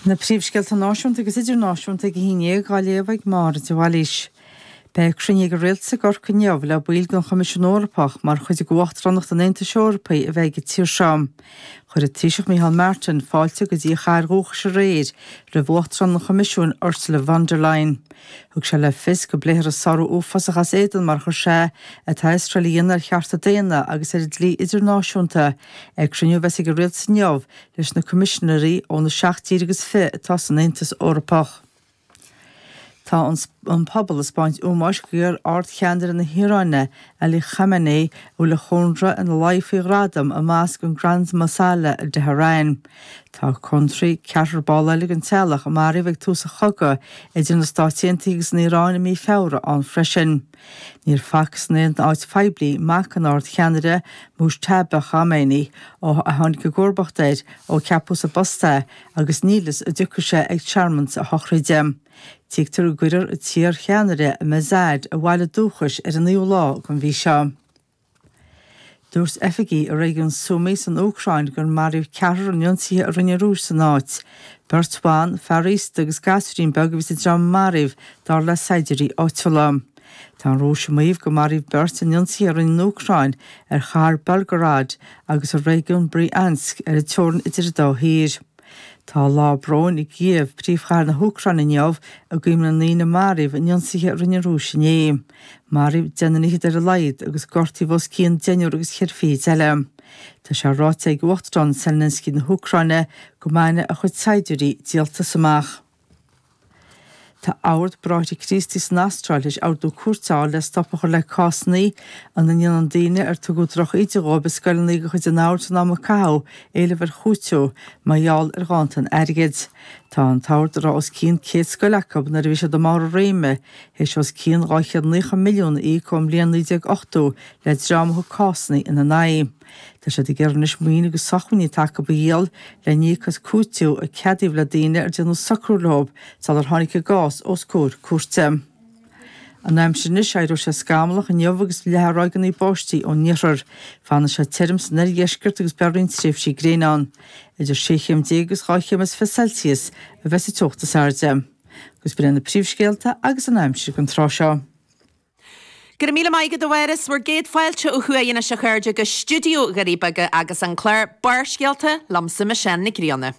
Na príomhscéalta náisiúnta agus idirnáisiúnta ag a haon dhéag á léamh ag Máire de Bhailís. Beidh cruinniú ag an Rialtas i gCorcaigh inniu le baill den Choimisiún Eorpach mar chuid d'Uachtaránacht an Aontais Eorpaigh a bheidh ag an tír seo. Chuir an Taoiseach Micheál Martin fáilte go dtí a chathair dhúchais aréir roimh Uachtarán an Choimisiúin Ursula von der Leyen. Thug sé le fios go bpléifear an sárú uafásach as éadan mar a chuir sé é atá Iosrael a dhéanamh ar chearta daonna agus ar an dlí idirnáisiúnta Ag cruinniú a bheas ag an Rialtas inniu leis na Coimisinéirí ó na seacht dtír agus fiche atá san Aontas Eorpach, tá an pobal ag 'spáint ómóis d'iar-ard-cheannaire na hIaráine, Ali Khamenei, a bhfuil a chónra ina laí faoi ghradam i mosc an Grand Mosalla i dTeharain. Tá cónraí ceathrar ball eile den teaghlach a maraíodh ag tús an chogaidh idir na Stáit Aontaithe agus an Iaráin i mí Feabhra ann freisin. Níor facthas in aon áit phoiblí mac an Ard-Cheannaire Mojtaba Khamenei ó a tháinig i gcomharbacht air ó ceapadh sa bpost é agus níl a fhios an dtiocfaidh sé ag searmanas na sochraide. Tuigtear go gcuirfear an t-iar-cheannaire i Mashhad a bhaile dúchais ar an naoú lá den mhí seo. Dúirt oifigigh i réigiún Sumy san Úcráin gur maraíodh ceathrar in ionsaithe a rinne an Rúis san áit. Beirt bhan, fear aosta agus gearrchailín beag a bhí sa dream a maraíodh, dar le saighdiúirí áitiúla. Tá an Rúis ag maíomh gur maraíodh beirt in ionsaithe a rinne an Úcráin ar chathair Belgorod agus ar réigiún Bryansk ar an teorainn idir an dá thír. Tá lá bróin i gCíév, príomhchathair na hÚcráine inniu, i gcuimhne na ndaoine a maraíodh in ionsaithe a rinne an Rúis inné. Maraíodh deich nduine fichead ar a laghad agus gortaíodh os cionn deichniúr agus cheithre fichid eile. Tá sé ráite ag Uachtarán Zelensky na hÚcráine go mbainfidh a chuid saighdiúirí díoltas amach. Tá Ord Bráithre Críostaí san Astráil tar éis ordú cúirte a fháil le stop a chur le cásanna ina ndéanann daoine ar tugadh droch-íde dhóibh i scoileanna de chuid an Oird san am a caitheadh éileamh ar chúitiú mar gheall ar ghanntan airgid. Tá an tOrd a raibh os cionn 100 scoil acu nuair a bhí siad i mbarr a réime, théis os cionn 290 milliún a íoc ón mbliain 1980 le dream a thug cásanna ina n-aghaidh. Tá siad ag iarraidh anois maoin agus sochmhainní atá acu a dhíol le n-íoc as cúiteamh a ceadaíodh le daoine ar déanadh socrú leo sular tháinig a gcás os comhair cúirte. An aimsir anois, éireoidh sé scamallach inniu agus leathfaidh ráigeanna báistí ón iarthar. Fanfaidh sé tirim san oirdheisceart agus beidh roinnt tréimhsí gréine ann. Idir sé chéim déag agus dhá chéim is fiche Celsius a bheidh sa teocht is airde. Agus b'in é na príomhscéalta agus an aimsir don tráth seo. Go raibh míle maith agat, a Mháire. Is bhur gcéad fáilte ó thuaidh anois, a chairde, go stiúideo Dhoirí Beaga agus an clár Barrscéalta, liomsa, Michelle Nic Grianna.